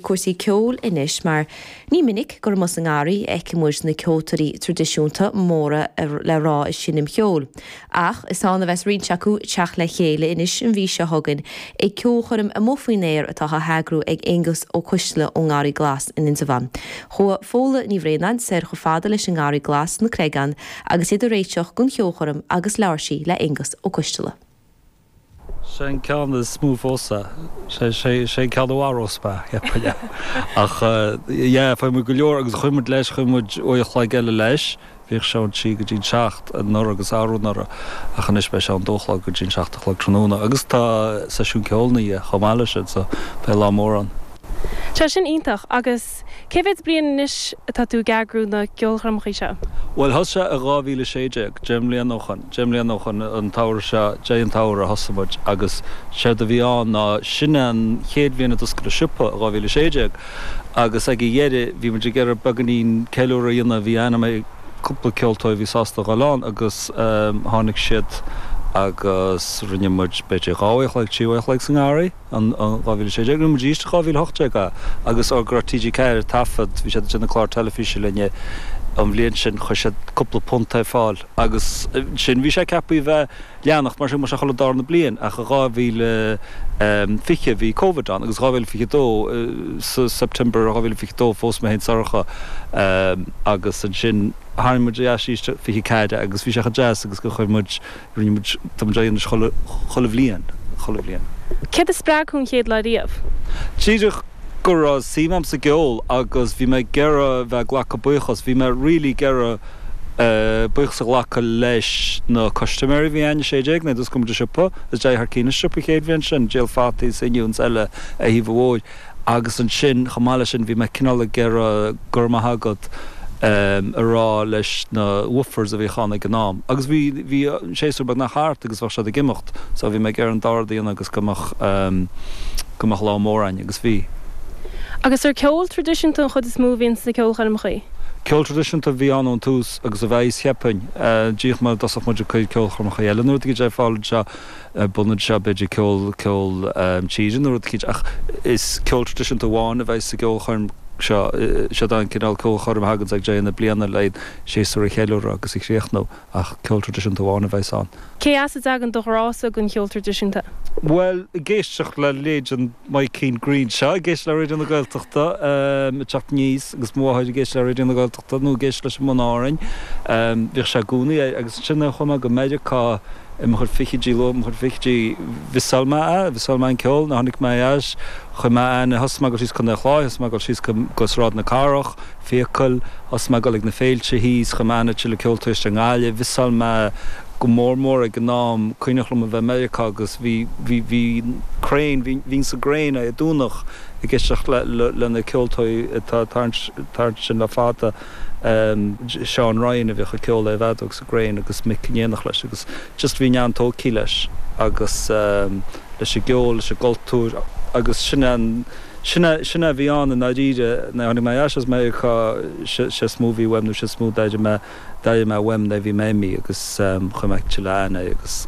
cúrsaí ceoil anois mar ní minic gur amuigh sa ngarraí a fheiceann muid na ceoltóirí traidisiúnta móra le rá ag seinm cheoil ach is ann a bheas roinnt acu ag teacht le chéile anois an mhí seo chugainn ag ceolchoirm amuigh faoin aer atá á heagrú ag Aonghus Ó Coistealla ón nGarraí Glas in Indreabhán. Chuaigh Fódhla Ní Bhraonáin soir chomh fada leis an nGarraí Glas sna Creagáin agus iad ag réiteach don cheolchoirm agus labhair sí le hAonghus Ó Coistealla. Sé an ceann is mó fós é. Sé sé sé an ceann a mharóidh mé, yep yeah. Ach yeah faigheann muid go leor agus chuaigh muid leis, chuaigh muid uair an chloig eile leis, bhíodh sé ón trí go dtí an seacht anuraidh agus arú anuraidh ach anois beidh sé ón dó a chlog go dtí an seacht a chlog tráthnóna agus tá seisiún ceoil ina dhiaidh chomh maith leis sin so beidh lá mór ann. Tá sin iontach agus. Agus cé mhéad bliain anois atá tú ag eagrú na gceolchoirmeacha seo? Bhuel, thosaigh sé i 2016, deich mbliana ó shin, deich mbliana ó shin an samhradh seo, deireadh an tsamhraidh a thosaigh muid agus séard a bhí ann ná, sin é an chéad bhliain a d'oscail an siopa, i 2016, agus ag a dheireadh bhí muid ag iarraidh beagainín ceiliúradh a dhéanamh, bhí aithne agam ar cúpla ceoltóir a bhí sásta a ghoil ann agus tháinig siad agus rinne muid b'fhéidir dhá uair an chloig, trí uair an chloig sa ngarraí. In 2016 rinne muid arís, 2018 a agus óir go raibh TG4 ag taifead, bhí siad ag déanamh clár teilifíse linn é an bhliain sin, chuir siad cúpla punt ar fáil agus ansin bhí sé ceapthaí a bheith ag leanacht mar sin mar sin chuile dara bliain ach in 2020 bhí Covid ann agus 2022 sa September 2022 phós mé féin is Sorcha agus ansin tharraing muid ar ais arís 24 agus bhí sé chomh deas agus gur chuir muid Rinne muid, tá muid á dhéanamh anois chuile bhliain, chuile bhliain. Céard a spreag thú an chéad lá riamh? Díreach go raibh suim agam sa gceol agus bhí mé ag iarraidh a bheith ag glacadh buíochas, bhí mé really ag iarraidh buíochas a ghlacadh leis na custaiméirí a bhí ann, 16 nuair a d'oscail muid an siopa, is d'éirigh thar cionn leis an siopa an chéad bhliain sin, ag díol fataí is oinniúin is eile ar thaobh an bhóthair. Agus ansin, chomh maith leis sin, bhí mé cineál ag iarraidh go raibh maith agat a rá leis na woofers a bhíodh ann ag an am. Agus bhí, bhí an séasúr beagnach thart agus bheadh siad ag imeacht so bhí mé ag iarraidh an dá rud a dhéanamh agus go mbeadh, go mbeadh lá mór againn. Agus bhí. Agus an ceol traidisiúnta an chuid is mó a bhíonn sna ceolchoirmeacha? Ceol traidisiúnta a bhí ann ón tús agus a bheidh, cheapfainn. B'fhéidir má thosaíonn muid ag cur ceolchoirmeacha eile nuair a bhí sé ag fáil anseo. An t-ionad seo b'fhéidir ceol, ceol tíre nó rud eicínt ach is ceol traidisiúnta amháin a bheidh sa gceolchoirm seo. Siod é an cineál ceolchoirm a thaganns ag deireadh na bliana le séasúr a cheiliúradh agus a chríochnú ach ceol traidisiúnta amháin a bheas ann. Cé as a dtagann do ghrá-sa don cheol traidisiúnta? Bhuel, ag éisteacht le raidió. Mike Keane Greenshaw ag éisteacht le Raidió na Gaeltachta um teacht aníos agus mo mháthair ag éisteacht le Raidió na Gaeltachta nó ag éisteacht leis an mBun Árainn. Bhíodh sé i gcónaí air agus ansin nuair a chuaigh mé go Meiriceá i mo chuid fichidí luath, mo chuid fichidí mhiosáil mé a, mhiosáil mé an ceol, nuair a tháinig mé ar ais, chuir mé aithne, thosaigh mé ag dul síos Contae an Chláir, thosaigh mé ag dul síos go, go Sráid na Cathrach, Fiacail, thosaigh mé ag dul ag na féilte thíos, chuir mé aithne ar thuilleadh ceoltóirí i nGaillimh, mhiosáil mé, go mór mór ag an am cuimhneach liom a bheith i Meiriceá agus bhí bhí bhí Crane bhí bhínn sa gCrane Dé Domhnaigh ag éisteacht le le lena ceoltóirí atá ag tarraingt tarraingt ansin le fada ehm Seán Ryan a bhíodh ag ceol ar an bhfeadóg sa gCrane agus Mick in éineacht leis agus just bhí mé an-tóigtí leis agus ehm leis an gceol leis an gcultúr agus sin an sin a sin a bhí ann i ndáiríre nuair a tháinig mé ar ais as Meiriceá sé sé is mó a bhí uaim nó sé is mó a d'airigh mé D'airigh mé uaim nuair a bhí mé imithe agus chuir mé tuilleadh aithne air agus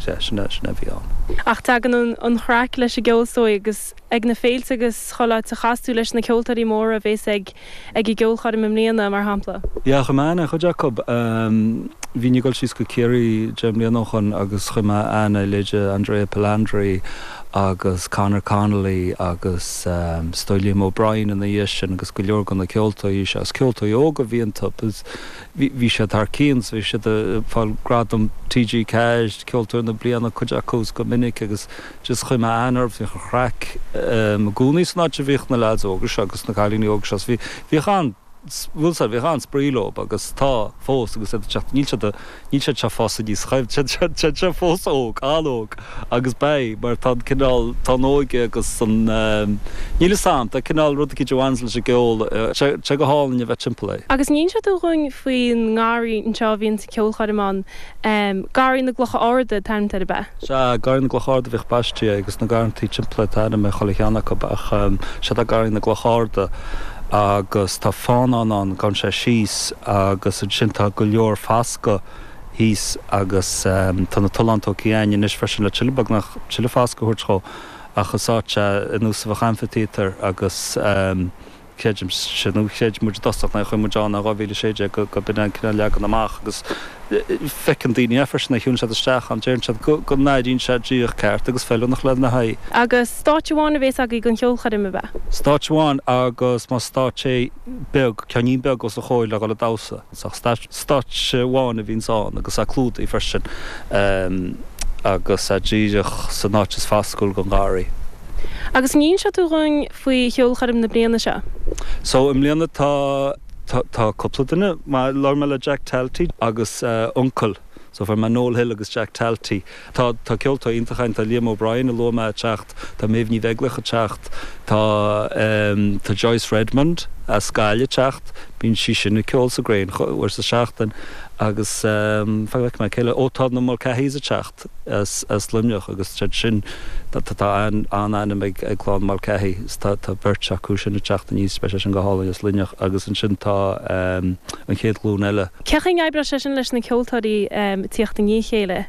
sea, sin é, sin é a bhí ann. Ach tagann an chraic leis an gceol is dóigh agus ag na féilte agus chuile áit a chas tú leis na ceoltóirí móra a bhéas ag ag an gceolchoirm i mbliana, mar shampla? Yeah, chuir mé aithne ar chuid acu. Bhínn ag dul síos go Ciarraí deich mbliana ó shoin agus chuir mé aithne ar leithéidí Andrea Palandri agus Conor Connolly agus. is dóigh Liam O'Brien ina dhiaidh sin agus go leor de na ceoltóirí seo. Is ceoltóirí óga a bhí iontu. Bhí siad thar cionn, so bhí siad ag fáil gradam TG4, Ceoltóir na Bliana, cuid acu is go minic agus just chuir mé aithne orthu, bhíodh an chraic i gcónaí san áit a bhíodh na leaids óga seo agus na cailíní óga seo, so bhíodh an. bhfuil 'fhios a'd, bhíodh an-spraoi leo agus tá fós agus iad ag teacht, níl siad, níl siad seo ag fás aníos, siad, siad, siad, siad seo fós óg, an-óg agus beidh mar tá an cineál, tá an óige agus an, níl 'fhios a'm, tá cineál rud eicínt a bhaineanns leis an gceol, tá sé go hálainn a bheith timpeall air. Agus an inseoidh tú dhúinn faoin ngarraí anseo a bhíonns an ceolchoirm ann. Garraí na gClocha Arda an t-ainm atá air ab ea? Sea, Garraí na gCloch Arda a bhíodh baistí air agus na garrantaí timpeall air tá ainm ar chuile cheann acu ach sea tá Garraí na gCloch Arda agus tá fánán ann, gabhann sé síos agus ansin tá go leor fascadh thíos agus tá na tolláin tógtha againn anois freisin le tuilleadh beagnach, tuilleadh fascadh a thabhairt dhó ach is áit é ar nós a bheadh amfaitéatar agus. Creidimse nó chreid muid i dtosach nuair a chuaigh muid ann in 2016 go mb'in é an cineál leagan amach agus feiceann daoine é freisin nuair a shiúlann siad isteach ann, déarann siad go n-airíonn sé díreach ceart agus feiliúnach lena aghaidh. Agus stáitse amháin a bhéas agaibh don cheolchoirm ab ea? Stáitse amháin agus mar stáitse beag, ceainnín beag os a chomhair le dhul ag damhsa. sa stáitse amháin a bhíonns ann agus é clúdaithe freisin agus é díreach san áit is fascúla gon gharraí. Agus an inseoidh tú dhúinn faoi cheolchoirm na bliana seo? So i mbliana tá, tá cúpla duine, labhair mé le Jack Talty agus a uncail. So far, Noel Hill agus Jack Talty. Tá, tá ceoltóirí iontacha ann, tá Liam O'Brien a luaigh mé ag teacht, tá Méabh Ní Bheaglaoich ag teacht, tá ehm, tá Joyce Redmond as Gaillimh ag teacht, bíonn sí sin ag ceol sa gCrane chuile uair sa tseachtain agus ehm, fan go bhfeicfidh mé, cé eile, ó tá na Mulcahys ag teacht as, as Luimneach agus siad sin, tá, tá, tá an, an-ainm ag, ag clann Mulcahy so tá, tá beirt acu sin ag teacht aníos, beidh sé sin go hálainn as Luimneach agus ansin tá ehm, an chéad ghlúin eile. Cé chaoi a n-oibreodh sé sin leis na ceoltóirí ag tíocht i ndiaidh a chéile?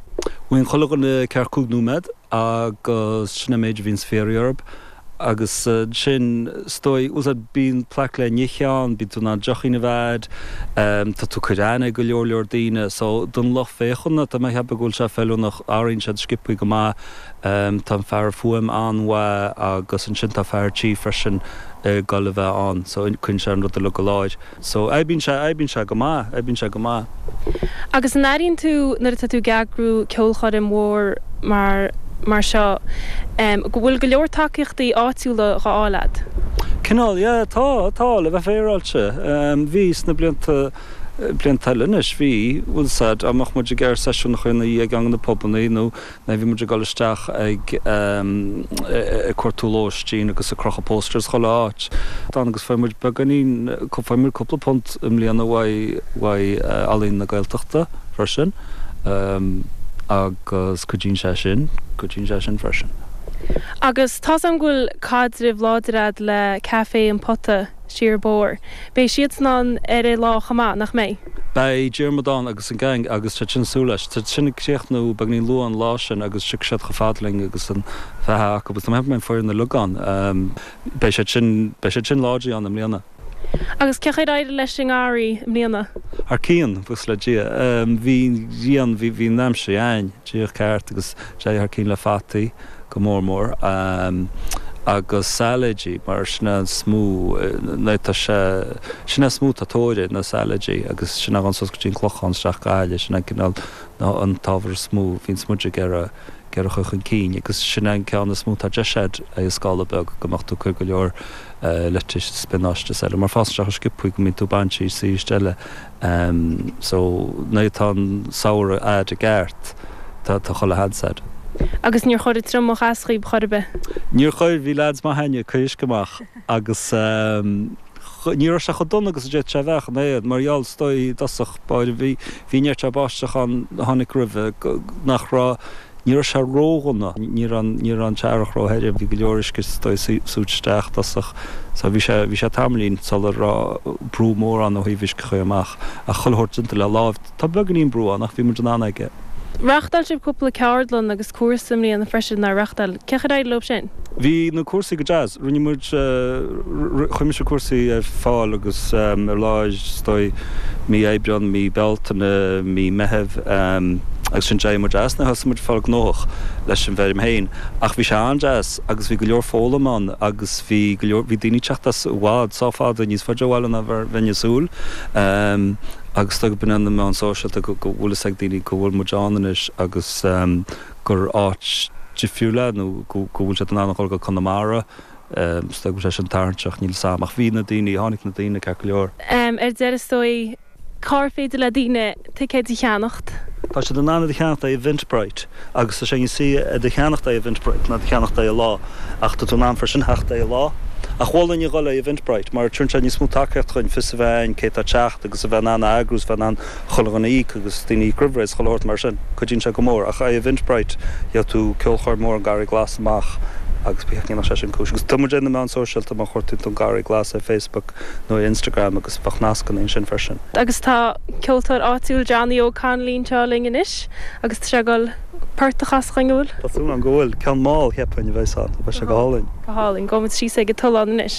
Bíonn chuile dhuine ceathair, cúig nóiméad agus sin an méid a bhíonn sa phéire orthub agus ansin is dóigh úsáid, bíonn plaic le n-ithe ann, bíonn tú in ann deochín a bheith a'd, tá tú ag cur aithne ar go leor leor daoine so don lucht féachana tá mé ag ceapadh go bhfuil sé feiliúnach, athraíonn siad sciopthaí go maith, tá an fear fuaim an-mhaith agus ansin tá fear tí freisin ag dul a bheith ann so cuireann sé an rud uilig i láthair. So, oibríonn sé, oibríonn sé go maith, oibríonn sé go maith. Agus an airíonn tú nuair atá tú ag eagrú ceolchoirm mhór mar, mar seo em, go bhfuil go leor tacaíochtaí áitiúla dhá fháil a'd? Cineál, yeah, tá, tá, le bheith féaráilte. Em, bhí sna blianta, blianta eile anois, bhí, bhfuil a fhios a'd, dá mbeadh muid ag iarraidh seisiúnacha ina dhiaidh ag na pubannaí nó Bhí muid ag dul isteach ag cuartú lóistín agus ag crochadh posters chuile áit. D'fhan agus fuair muid beagáinín, fuair muid cúpla punt i mbliana uaidh Ealaín na Gaeltachta freisin agus cuidíonn sé sin, cuidíonn sé sin freisin. Agus tá's agam go bhfuil caidreamh láidir agat le Café an Phota. siar an bóthar. Beidh siadsan ann ar a' lá chomh maith, nach mbeidh? Beidh Diarmuid ann agus an gang agus tá siad ag súil leis. Tá siad ag críochnú beagáinín luath an lá sin agus tiocfaidh siad chomh fada linn agus an bheatha acu agus go mbeidh an fhoireann uilig ann. Beidh siad sin, beidh siad sin láidir ann i mbliana. Agus cé chaoi ar éirigh leis an ngarraí i mbliana? Thar cionn, buíochas le Dia. Bhí an ghrian, bhí an aimsir dhúinn díreach ceart agus d'éirigh thar cionn le fataí. go mór mór, agus sailéidí mar sin é is mó, tá sé, sin é is mó atá tóir air, na sailéidí agus sin a ghabhann suas go dtí an Clochán isteach go Gaillimh, sin an cineál na an t-ábhar is mó a bhíonn muid ag iarraidh ag iarraidh a chur chun cinn agus sin an ceann is mó atá deis air ar scála beag go mbeadh tú ag cur go leor leitís spionáiste is eile mar fásann siad chomh sciopthaí go mbíonn tú ag baint as aríst eile Em so nuair atá an samhradh a'd i gceart tá tá chuile sheans a'd. Agus níor chuir an triomach as dhaoib chor ar bith? Níor chuir, bhí leaid maith a'inne ag cur uisce amach agus em ní raibh sé chomh dona agus a d'fhéadfadh sé a bheith ach eh mar gheall is dóigh i dtosach báire bhí bhí neart báisteach ann a tháinig roimhe nach raibh Ní raibh sé ródhona, ní raibh, ní raibh an t-earrach róthirim, bhí go leor uisce is dóigh súite isteach i dtosach so bhí sé, bhí sé tamaillín sular raibh brú mór ann ó thaobh uisce a chur amach ach chuile shórt déanta le láimh. Tá beagainín brú ann ach bhí muid in ann aige. Reáchtáil sibh cúpla ceardlann agus cúrsaí i mbliana freisin, nár reáchtáil? Cén chaoi ar éirigh leo sin? Bhí na cúrsaí go deas. Rinne muid, chuir mise cúrsaí ar fáil agus ó lár, is dóigh, mí Aibreán, mí Bealtaine, mí Meithimh agus ansin d'éirigh muid as. Nuair a thosaigh muid ag fáil gnóthach leis an bhfeirm féin ach bhí sé an-deas agus bhí go leor foghlaim ann agus bhí go leor, bhí daoine ag teacht as i bhfad, sách fada, níos faide ó bhaile ná mar a bheinn ag súil agus is dóigh go mbaineann na meáin sóisialta go bhfuil fhios ag daoine go bhfuil muid ann anois agus gur áit difriúil é nó go bhfuil siad in ann a dhul go Conamara. Is dóigh go bhfuil sé sin tarraingteach, níl 'fhios a'm. Ach bhí na daoine, tháinig na daoine ceart go leor. Ar deireadh is dóigh, cár féidir le daoine ticéid a cheannacht? Tá siad in ann iad a cheannacht ar Eventbrite agus tá sé níos saoire iad a cheannacht ar Eventbrite ná iad a cheannacht ar an lá. Ach tá tú in ann freisin theacht ar an lá. Ach mholfainn a dhul ag Eventbrite mar tugann sé níos mó tacaíocht dhúinn fios a bheith a'inn cé atá ag teacht agus a bheith in ann a eagrú 's a bheith in ann chuile dhuine a íoc agus daoine a íoc roimh ré is chuile shórt mar sin. Cuidíonn sé go mór. Ach ar Eventbrite gheobhaidh tú ceolchoirm mór an Garraí Glas amach agus ba cheart go ndéanfadh sé sin cúis. Agus tá muid ar na meáin sóisialta má chuartaíonn tú an Garraí Glas ar Facebook nó ar Instagram agus beidh nascanna ansin freisin. Agus tá ceoltóir áitiúil Johnny Óg Connolly anseo linn anois agus tá sé ag dul port a chasadh dhúinn, an bhfuil? Tá súil agam go bhfuil. Ceann mall, cheapfainn, a bheas ann. Beidh sé go hálainn. Go hálainn. Gabhfaidh muid síos ag an tollán anois.